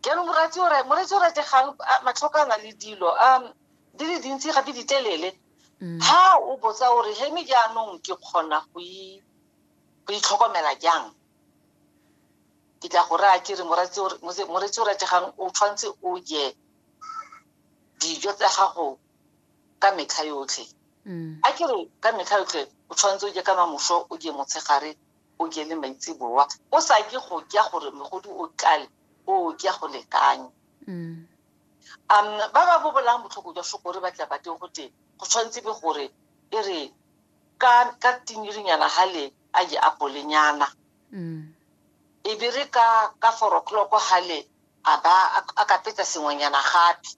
jaanong moratsi o moretsi o rategang matlhokana le dilo um di le dintsi gape di telele mm. ha o botsa o re he me jaanong ke kgona go itlhokomela jang ke tla go raya ke re moretsi o rategang o tshwanetse o je dijo tsa gago ka metlha yotlhe mm. a ke re ka metlha yotlhe o tshwanetse o je ka mamoso o je motshegare O kene maitseboa, o sa ke go kya gore mogodu o tlale, o kya go lekanya. Um, ba ba bobolang botlhoko jwa shokore ba tla bateng go te go tshwanetse be gore e re ka ka tinyirinyana ha le a je apolenyana e be re ka ka four o'clock ha le a ba a ka petsa sengwenyana gape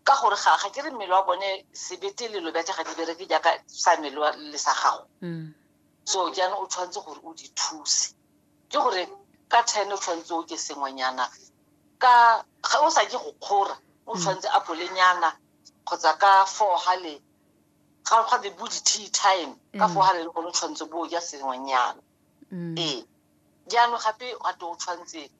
ka gore ga ga ke re mmele wa bone sebete le lobete ga di bereke jaaka sa mmele wa le sa gago mm. so jaanong o tshwanetse gore o di thuse ke gore ka ten o tshwanetse o ke sengwenyana ka ga o sa ke go kgora o mm. tshwanetse a polenyana kgotsa ka four gale ga ga be bo di-tea time ka mm. four gale le gone o tshwanetse bo ja sengwenyana mm. ee jaanong gape wa to o tshwanetse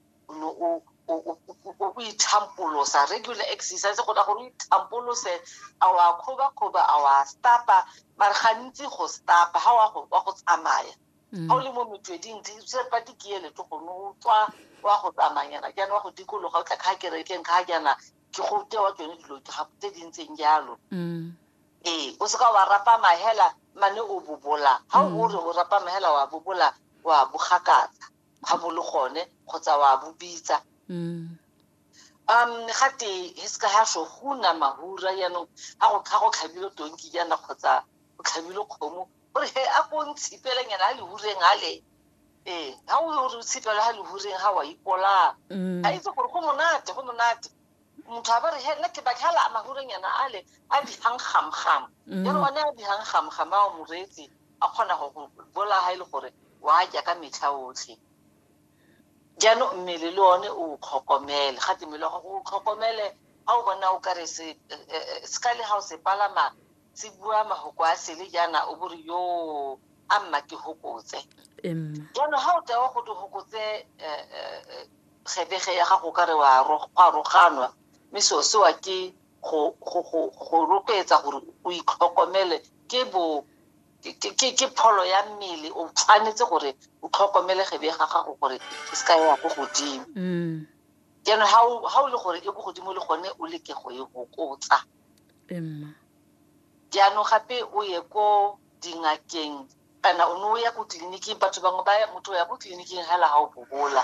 o ithampolosa regular exercise go na gore o ithampolose a wa kgobakgoba a wa stapa mare gantsi go stapa ga wa go tsamaya mm. ga o le mo metsweding sepa dikiele to gone o tswa wa go tsamayana jaana wa go dikologa o tla kga kerekeng kga jaana ke go tewa tsone dilo tse di ntseng jalo mm. ee o seka wa rapama hela mane o bobola ga o mm. re o rapama hela wa bobola wa bogakatsa ga bo le gone kgotsa wa bobitsa mm. um ga te he seka ga so go na mahura yaanong ga go tlha go tlhabile tonki jaana kgotsa go tlhabile kgomo gore he a ko ntshipele nyana a lehureng ga le ee ga o re o tshipele ga lehureng ga wa ipolaa mm. a itse gore go monate go monate motho a bore he nna ke baka la mahuranyana a le a bihang gamgam mm. ya re one a bihang gamgam a o moreetsi a kgona go bola ga e le gore wa ja ka metlha otlhe jaanong mmele le one o tlhokomele ga te mmele wa gago o tlhokomele ga o bona o kare se eh, eh, eh, se ka le ga o se palama se bua magoko a sele jaana o bore yo a mma ke hokotse jaanong ga o tewa go te gokotse Kgethege ya gago ka re go a roganwa, mme seo sewa ke go rotloetsa gore o itlhokomele ke bo ke pholo ya mmele o tshwanetse gore o tlhokomele kgebe ga gago gore e se ka ya ko godimo mm. jaanong ga o le gore e ko godimo le gone o leke go e gokotsa jaanong gape o ye ko dingakeng kana o ne o ya ko tleliniking batho bangwe ba motho o ya ko tleliniking hela ga o bobola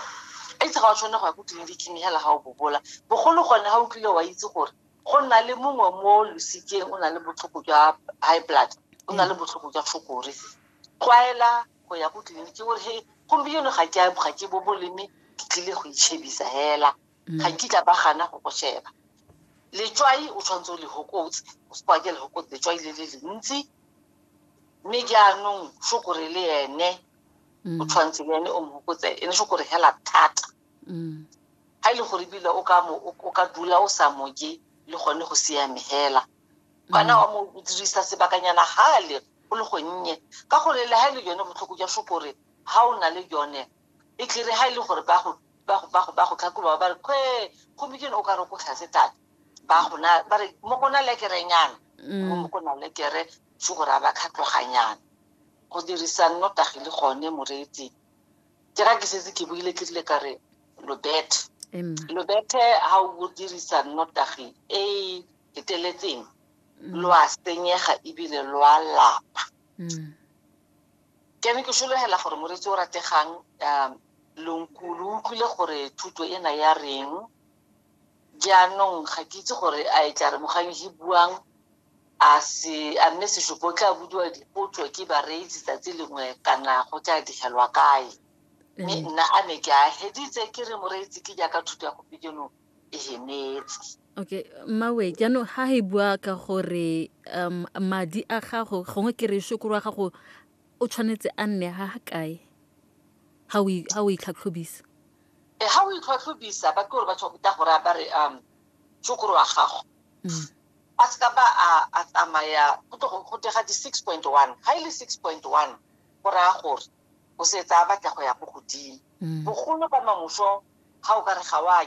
a itse ga o tshwane go ya ko tleliniking hela ga o bobola bogolo gone ga o tlile wa itse gore go nna le mongwe mo losikeng o na le botlhoko jwa high blood o na le botlhoko jwa fokore tlwaela go ya ko tleliniking gore he gompieno ga ke ga ke boboleme ke tlile go itšhebisa hela mm. ga nkitla ba gana go go sheba letswai o tshwanetse o le hokotse o se kwake le hokotse letswai le le lentsi mme jaanong shokore le ene o mm. tshwanetse le ene o mo hokotse ene shokore hela thata ga mm. e le gore ebile o ka dula o sa moje le gone go siame hela kana wa mo dirisa sebakanyana gale go le gonnye ka gore le ga e le yone botlhoko jwa shokore ga o na le yone e tlere ga e le gore ba go ba go ba go ba go tlhakuba ba re kwe gomikene o ka re ko tlhatse tata ba gona ba re mo kona lekerenyana mo mo kona lekere se gore a ba khatloganyana go dirisa nnotagi le gone moreetsi ke ga ke setse ke buile ke rile ka re lobethe lobethe ga o dirisa nnotagi e e feteletseng lo a senyega ebile lo a lapa Ke ne ke solegela gore moretsi o rategang um lonku lo utlwile gore thuto ena ya reng jaanong ga ke itse gore a e tla re mogang e buang a se a mme sesupo o tla budiwa dipotso ke bareetsi tsatsi lengwe kana go tla digelwa kae mme nna a ne ke a heditse ke re moreetsi ke jaaka thuto ya gompieno e hemetse okay mmawe jaanong ga e bua ka gore um madi a gago gongwe ke re shokoro wa gago o tshwanetse a nne ga ga kae ga o itlhatlhobisa e ga o itlhatlhobisa ba ke gore ba tshwakuta gore a ba re um shokoro wa gago mm. a se ka ba a tsamaya go tega di-six point one ga e le six point one go raya gore o setse a batla go ya ko godimo mm. bogolo ba mamoso ga o ka re ga wa